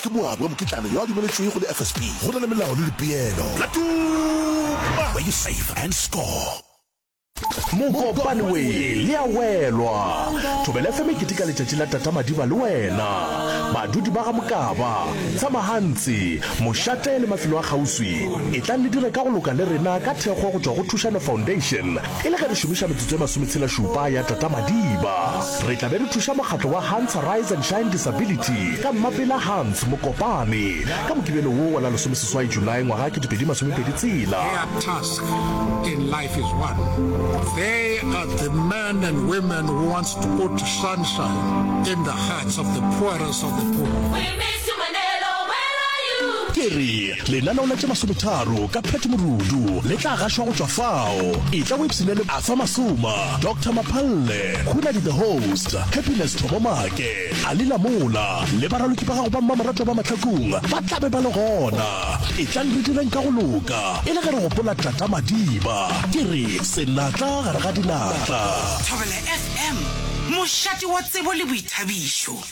Ke moabi wa mokitlana yo a dumeletšwego go di-FSP go na le melao le dipeelo. La tuma! Where you save and score. Mokopane we le a welwa. Thobela FM e keteka letšatši la Tata Madiba le wena. Badudi ba ga Mokaba, Tsamahantsi, Mošate le mafelo a kgauswi, etlang le dire ka go loka le rena ka thekgo go tšwa go Thušano Foundation. E le ge re šomiša metsotso e masometshela-šupa ya Tata Madiba, re tla be re thuša mokgatlo wa Hans Arise and Shine Disability ka Mmapela Hans Mokopane ka Mokibelo wo wa la lesomeseswai Julae ngwaga wa kete pedi masomepedi tshela. Their task in life is one. They are the men and women who wants to put sunshine in the hearts of the poorest of the poor. We miss you Mandela, where are you? Ke re Lenaneo la tše masometharo ka Pat Morudu le tla gašwa go tšwa fao. Etla o ipshine le Arthur Masuma, Doctor Maphalle, Hunadi the Host, Happiness Thobomake, Ali Lamola le baraloki ba gago ba mmamoratwa ba mahlakong ba tla be ba le gona. Etlang re direng ka go loka e le ge re gopola Tata Madiba. Ke re, Senatla gare ga dinatla. Thobela FM, mošate wa tsebo le boithabišo.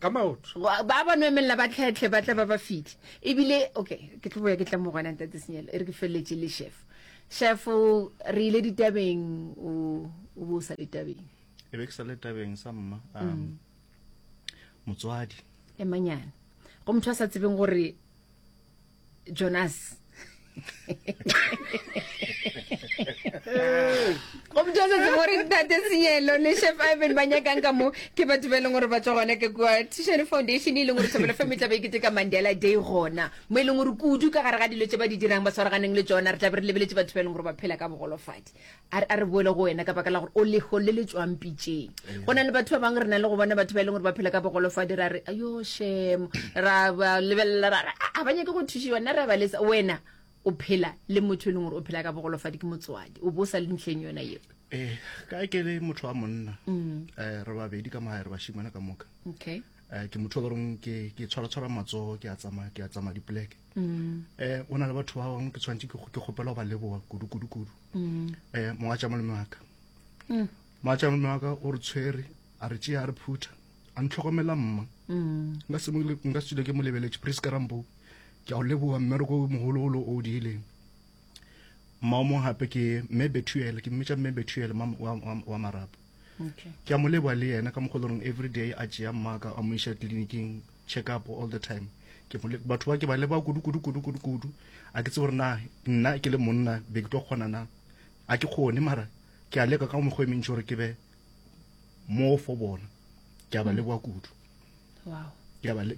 ka maoto ba ba no emelela ba tlhetlhe ba tla ba ba fitlhe ebile okay ke tlo boya ke tla mo gona ntate senyelo e re ke feleletse le chef chef re ile ditabeng o o bo sa ditabeng e be ke sa le tabeng sa mma um mm. motswadi emanyane go motho a sa tsebeng gore jonas go mthosa se gore tate seelo le chef ivan ba nyakang ka mo ke batho ba e leng gore ba tswa gona ke kwa tishane foundation e leng gore thobelo fa metla ba ikete ka mandela day gona mo e leng gore kudu ka gare ga dilo tse ba di dirang ba tshwaraganeng le tsona re tla be re lebeletse batho ba e leng gore ba phela ka bogolofadi A re, a re boele go wena ka baka la gore o leho le le tšwang pitšeng. Go na le batho ba bangwe re na le go bona batho ba e leng gore ba phela ka bogolofadi ra re yo shemo ra ba lebelela ra re ga ba nyake go thušiwa nna re ba lesa wena o phela le motho e leng gore o phela ka bogolofadi ke motswadi o bo sa le ntlheng yona yeo ee ka ke le motho wa monna um re babedi ka mogae re bashimana ka moka okay um ke motho o loreng ke ke tshwaratshwara matsogo ke a tsamaya ke a tsamaya dipoleke um o na le batho ba bangwe ke tshwanetse ke kgopela go ba leboa kudu kudu kudu mm. eh monga tša molome wa ka mm. monga tša molome wa ka o re tshwere a re tšea a re phutha a ntlhokomela mma mm. nka se nka se ke mo lebeletše priska rambo ke a o leboga mmereko mogologolo o o diileng mma o mongwe gape ke mme bethuele ke mmetša mme bethuele wa marapo okay. ke a mo leboa le yena ka mokgwa loreng every day a tšea mmaka a mo iša tleliniking check up all the time ke batho ba ke ba leba kudu kudu kudu kudu kudu a ke tse gore na nna ke le monna be ke tlo kgona na a ke kgone mara ke a leka ka mokgwa e mentši gore ke be mo fo bona ke a ba leboa kudu wow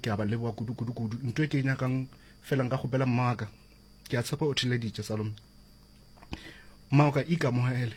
ke a ba leboa kudu kudu kudu ntho e ke e nyakang fela nka kgopela mmaka ke a tshepa o theleditše salome mmaka ikamohele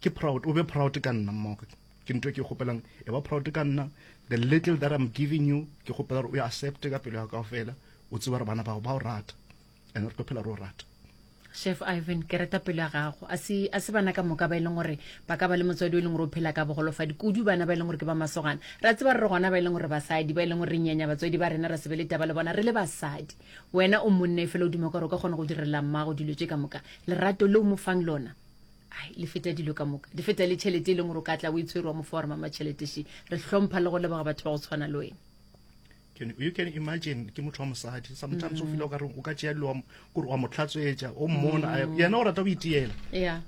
Ke proud, o be proud ka nna mmogo. Ke nto ke kgopelang, e ba proud ka nna. The little that I'm giving you, ke kgopela gore o e accepte ka pelo ya kao fela. O tseba gore bana bao ba o rata. And re tlo phela re o rata. Chef Ivan, ke reta pelo ya gago. A se a se bana ka moka ba e leng gore ba ka ba le motswadi o e leng gore o phela ka bogolofadi. Kudu bana ba e leng gore ke ba masogana. Ra tseba re re gona ba e leng gore basadi ba e leng gore re nyenya batswadi ba rena ra se be le taba le bona re le basadi. Wena o monna e fela o duma gore o ka kgona go direla mmago dilo tše ka moka. Lerato le o mo fang lona. ai le feta dilo ka moka le feta le tšhelete e leng gore o ka tla o e tshwere wa mofa wa re mama tšhelete she re hlompha le go leboga batho ba go tshwana le wena you can imagine ke motho wa mosadi sometimes o mm. fila okare o ka tšea dilo kore wa mo tlhatswetša o mmona mm. yena o rata go itiela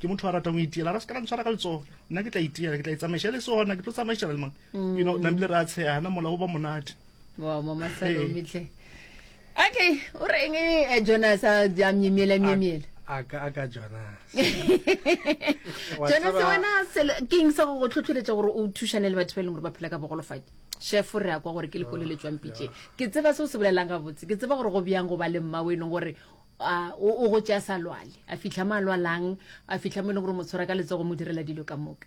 ke motho a ratang go itiela ra se ka ntshwara ka letsogo nna ke tla itiela ke tla itsamaiša e le sona ke tlo tsamaišela le mang mm. you know nabile re a tshegana mola o ba monate wow mama salomitlhe Okay, o reng eh, Jonas a a myemyela myemyela. a ka a ka jonas Wa Jonas tseba- wena selo- ke eng sa go go tlhotlheletša gore o thušane le batho ba e leng gore ba phela ka bogolofadi shefo re ya kwa gore ke lekolo le tswang pitšeng ke tseba se o se bolelang gabotse ke tseba gore go bjang go ba le mma o e leng gore a, o o go tšea sa lwale a fitlha mo a lwalang a fitlha mo e leng gore mo tshwara ka letsogo mo direla dilo ka moka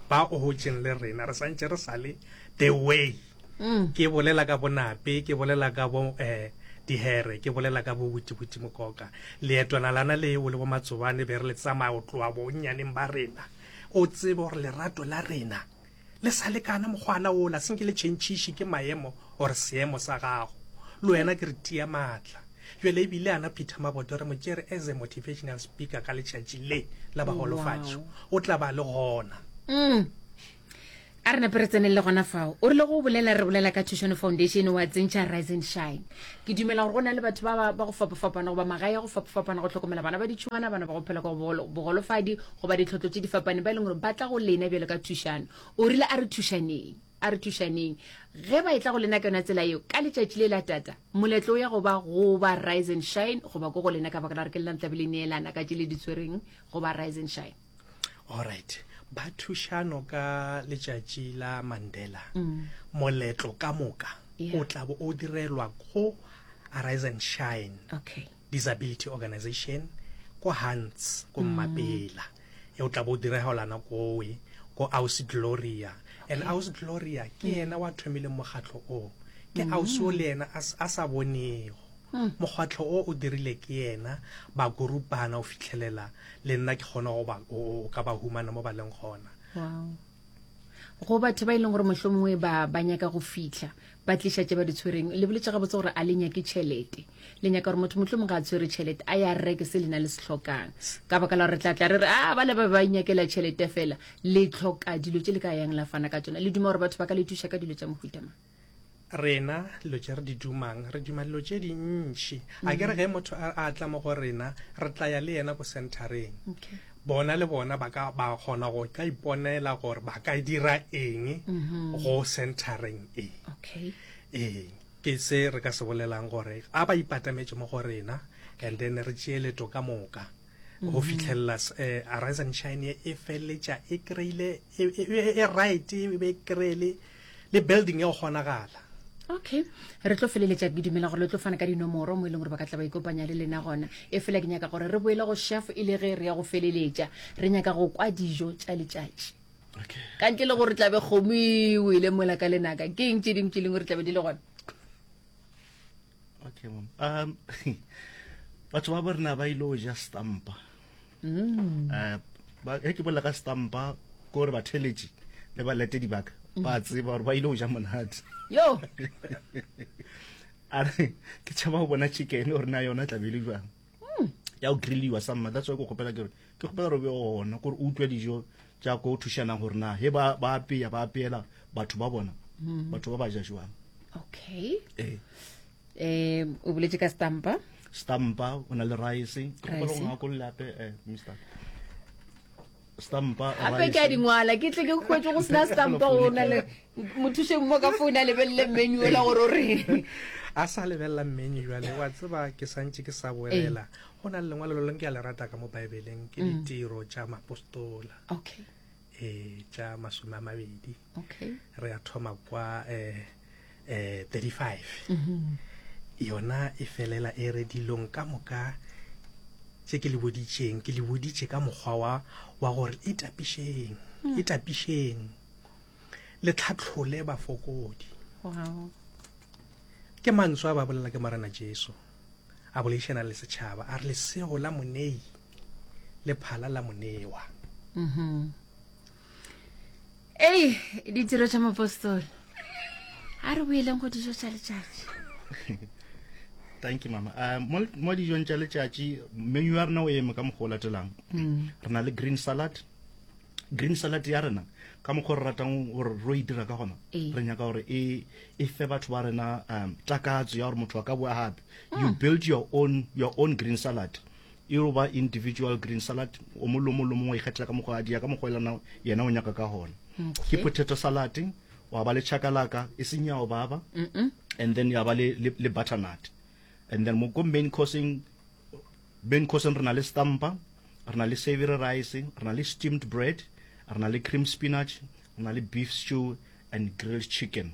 ba o hotšeng le rena re santše re sa le the way mm. ke bolela ka bonape ke bolela ka bo eh dihere ke bolela ka bobutibuti mokoka leetwana lana le o le bo matsobane be re le tsamaya o tloa bonnyaneng ba rena o tsebe gore lerato la rena le sa lekana mokgwana ola senke le tšhentšhiše ke maemo gore seemo sa gago le wena ke re tia maatla Bjale e bile ana Peter Maboto re mo tšere as a motivational speaker ka letšatši le la baholofatšo. O tla ba le gona. Mm. a re nape re tseneng le gona fao o rile go bolela re bolela ka thušono foundation wa tsentšha rise and shine ke dumela gore go na le batho ba ba- ba go fapafapana goba magae ya go fapafapana go tlhokomela bana ba ditšhwana bana ba go phela ka bogolo- bogolofadi goba ditlhotlo tše di fapaneng ba e leng gore ba tla go lena bjalo ka thušano o rile a re thušaneng a re thušaneng ge ba e tla go lena ka yona tsela eo ka letšatši le la tata moletlo o ya go ba go ba rise and shine goba ko go lena ka baka la re ke lena tlabe le neelana ka tše le di tshwereng go ba rise and shine allright ba thušano ka letšatši la mandela mm. moletlo ka moka o tla bo o direlwa go rise and shine okay disability organization ko hunts ko mm. mmapela e o tla bo diregelana kowe ko ausi gloria and mm. ausi gloria ke mm. yena wa thomileng mokgatlho o ke ausi o le yena a sa bonego mokgwatlho o o dirile ke yena ba korupana o fitlhelela le nna ke kgona go ka ba humana mo ba leng gona go batho ba e leng gore mohlomongwe ba ba nyaka go fitlha ba tliša tše ba di tshwereng le boletse gabotse gore a le nyake tšhelete le nyaka gore motho motlho mongwe a tshwere tšhelete a ya reke se le na le se tlhokang ka baka la gore tla tla re re a ah, ba le ba ba inyakela tšhelete fela le tlhoka dilo tše le ka yang la fana ka tsona le duma gore batho ba ka le thuša ka dilo tša mohutama rena dilo tše re di dumang re duma dilo tše dintši a ke re ge motho a tla mo go rena re tla ya le yena ko centereng bona le bona ba ka ba kgona go ka iponela gore ba ka dira eng mhm. go centering e okay ee ke se re ka se bolelang gore a ba ipatametse mo go rena and then re tšee leto ka moka go mhm. fitlhelela um eh, arise and shine e feleletša e kry-ile e, e, e right e be kry-ele le building ya go kgonagala okay re tlo feleletša ke dumela gore le tlo fana ka dinomoro mo e leng gore ba ka tla ba ikopanya le lena gona e fela ke nyaka gore re boele go chef e le ge re ya go feleletša re nyaka go kwa dijo tša letšatši ka ntle le gore tlabe kgomo ewele mola ka lenaka ke eng tše dingwe tše leng gore tlabe di le gona okay mom um batho ba bo rena ba ile go ja stampa um ge ke bolela ka stampa kore batheletši le baletedi baka ba tseba gore ba ile go ja monate yo a re ke tšhaba go bona chicken gore na yona tlabele jang hmm. ya go grilliwa sa mma that's why ke kgopela ke gore ke kgopela gore be gona kore o utlwa dijo tša ko thušanang gore na he ba apeya ba apeela batho ba bona hmm. batho ba ba ja jwang okay eh. um o boletse ka stampa stampa o na le rice ke kgopela go ngakolola gape um eh, mr stampa gape ke a dingwala ke tle ke kwetse go sena stampa o na le mothušeng mo ka foune a lebelele menu ola gore o reng a sa lebelela menu jale wa tseba ke santse ke sa boelela go na le lengwalo lo leng ke a le rata ka mo baebeleng ke mm. ditiro tša mapostola okay e tša masome a mabedi okay. re ya thoma kwa eh, eh, 35 mm -hmm. yona e felela e re dilong ka moka tse ke le boditšeng ke le boditše ka mokgwa wa wa gore e tapišeng mm. e tapišeng le tlhatlhole bafokodi wow. ke mantswe a ba bolela ke morena jesu a boleišana le setšhaba a re lesego la monei le phala la monewa ei ditiro tša mapostole a re boeleng go dijo tša letšatši thank you mama uh, mo, mo dijong tša letšatši menu ya rena o eme ka mokgwa o latelang mm. re na le green salad green salad ya rena ka mokgwa re ratang gore ro e dira ka gona ee. re nyaka gore e, e fe batho ba rena um takatso ya gore motho wa ka boa gape you ah. build your own, your own green salad E yo ba individual green salad, o mong le o mong le o mong wa ikgethela ka mokgwa a dia ka mokgwa elana yena o nyaka ka gona. Ke potato salad, wa ba le chakalaka e seng ya o baba, and then ya ba le le, le butternut. And then mo ko main course-eng, main course-eng re na le stampa, re na le savoury rice, re na le steamed bread, re na le cream spinach, re na le beef stew and grilled chicken.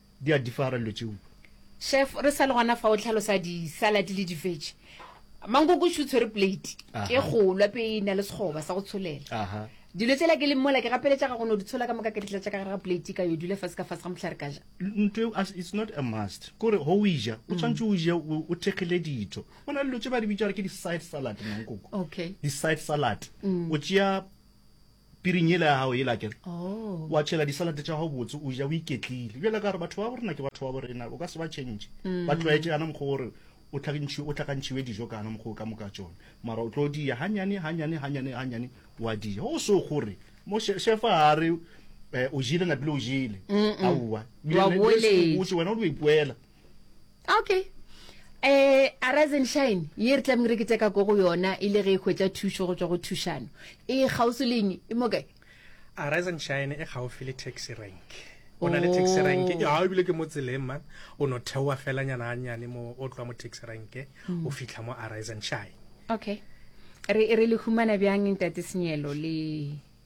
Di a differa dilo tšeo. Chef re sale gona fa o tlhalosa di salad le di veg. Mankoko shu tshwere plate ke golwa pe e na le sekgoba sa go tsholela. Aha. Dilo tsela ke leng mola ke gapeletša ga go no di tshola ka moka ke di tlatša ka gare ga plate ka yo dula fa se ka fa se ga motlhare ka ja. Ntwe it's not a must. Kore go o ija o tshwantse o je o thekgile ditho. Go na le dilo tše ba di bitša gore ke di side salad mankoko. Okay. Di side salad. O tšea piring yela ya gago yela kere oh. wa tšhela disalate tša gago botse o ja o iketlile bjale ka gore batho ba borena ke batho ba borena o ka se ba tšhentšhe mm. ba tlwaetse yana mokgwa gore o tlhakantšhiwe dijo kana mokgwa o ka moka tsone mara o tlo diya ganyane ganyane ganyane ganyane wa diya go se gore mo shefa a re um o jile napile o jile aowa wena o lo ipoela okay eh arise and shine ye re tlameng re keteka ko go yona e le ge e hwetša thušo go tšwa go thušano e kgauswi leng e mo kae arise and shine e gaufi le taxi rank o na le taxi rank Oh. ga ebile ke mo tseleng man o no theoa felanyana gannyane mo o tloa mo taxi rank o fitlha mo arise and shine okay re re le humana bjang ntate senyelo le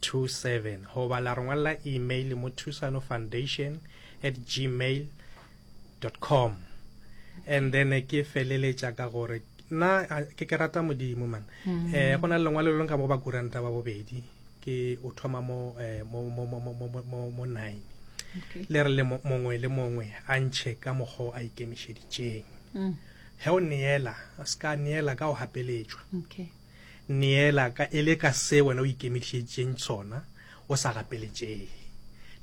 27 goba la re ngwalela email mo thusanofoundation at gmail com and then ke feleletša ka gore nna ke ke rata modimo man um go na le lengwalo le leng ka mo ba kuranta ba bobedi ke o thoma mo eh, mo mo mo mo mo mo nine le re le mongwe le mongwe a ntšhe ka mokgwa o a ikemišeditšeng mm. ge o neela a se ka neela ka o gapeletšwa Neela ka e le ka se wena o ikemišeditšeng sona, o sa gapeletšege.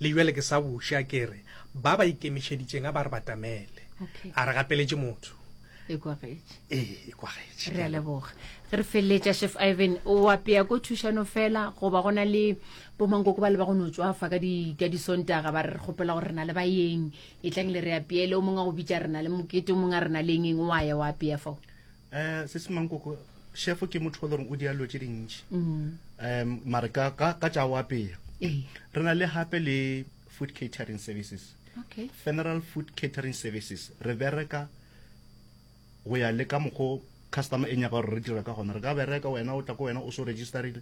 Le bjale ke sa buša, ke re, ba ba ikemišeditšeng a ba re batamele. Okay. A re gapeletše motho. E kwagetše. Ee, e kwagetše. Re a leboga. Ge re feleletša, Chef Ivan, o apea ko thušano fela goba go na le bomankoko ba le ba go no tswafa ka di ka disontaga ba re re kgopela gore re na le bayeng e tlang le re apeele o mongwe a go bitša re na le mokete o mongwe a re na le eng eng wa ya wa apea fao um se se mankoko shefo ke motho o le goreng o dira dilo tse dintšhi um mare ka ka- ka tša go apeya Ee. re na le gape le food catering services Okay. funeral food catering services re bereka go ya le ka mokgo customer e nyaka gore re dira ka gona re ka bereka wena o tla ko wena o so registerile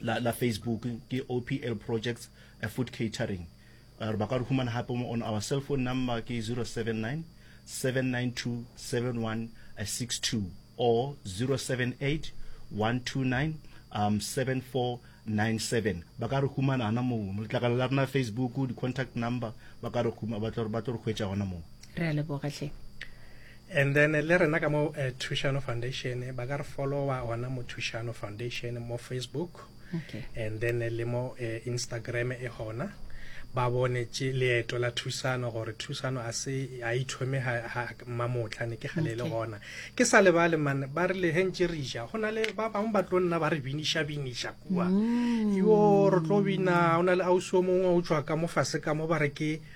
la, la Facebook ke OPL Projects a Food Catering. Uh, ba ka re humana hape mo on our cell phone number ke 079 792 7162 or 078 129 um 7497 ba ka re humana ana mo letlakala la rena Facebook di contact number ba ka re huma ba tlo ba tlo re hwetša gona mo re a leboga hle And then le rena ka mo uh, Thušano Foundation ba ka re followa gona mo Thušano Foundation mo Facebook okay. and then le mo uh, Instagram e gona ba bone tše leeto la thusano gore thusano a se a ithome mamotla ne ke gale le gona ke sa lebale mane ba re lehentše re ja go na le ba bangwe ba tlo nna ba re biniša biniša kua mm. yo re tlo bina o na le ausi o mongwe o tswa ka mo fase ka mo ba re ke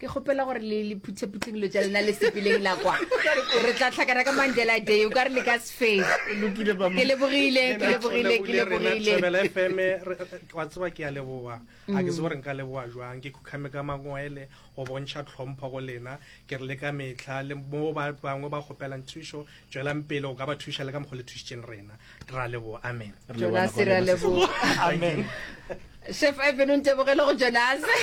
ke kgopela gore le le phuthephuthe dilo tša lena le sepeleng la kwa re tla tlhakana ka mandela day o ka re le ka sefee ke lebogile ke lebogile ke lebogileebelafm wa tseba ke ya leboa a ke se gore nka leboa jwang ke khukhame ka mangwele go bontšha tlhompho go lena ke re le ka metlha le mo bangwe ba kgopelang thušo Tšwelang pele go ka ba thuša le ka mokgwa le thušitšeng rena. Ra leboa. Amen. Jonase re a leboga. Amen. Chef Ivan o ntebogele go Jonase.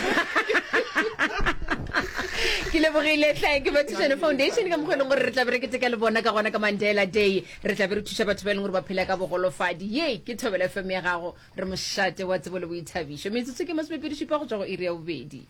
ke lebogile tlhae ke bathušane foundation ka mokgwa e leng gore re tlabe re keteka le bona ka gona ka mandela day re tlabe re thuša batho ba e leng gore ba phela ka bogolofadi ye ke thobela fm ya gago re mošate wa tsebo le boithabišo metsotso ke masomepedi šupa go tswa go iri ya bobedi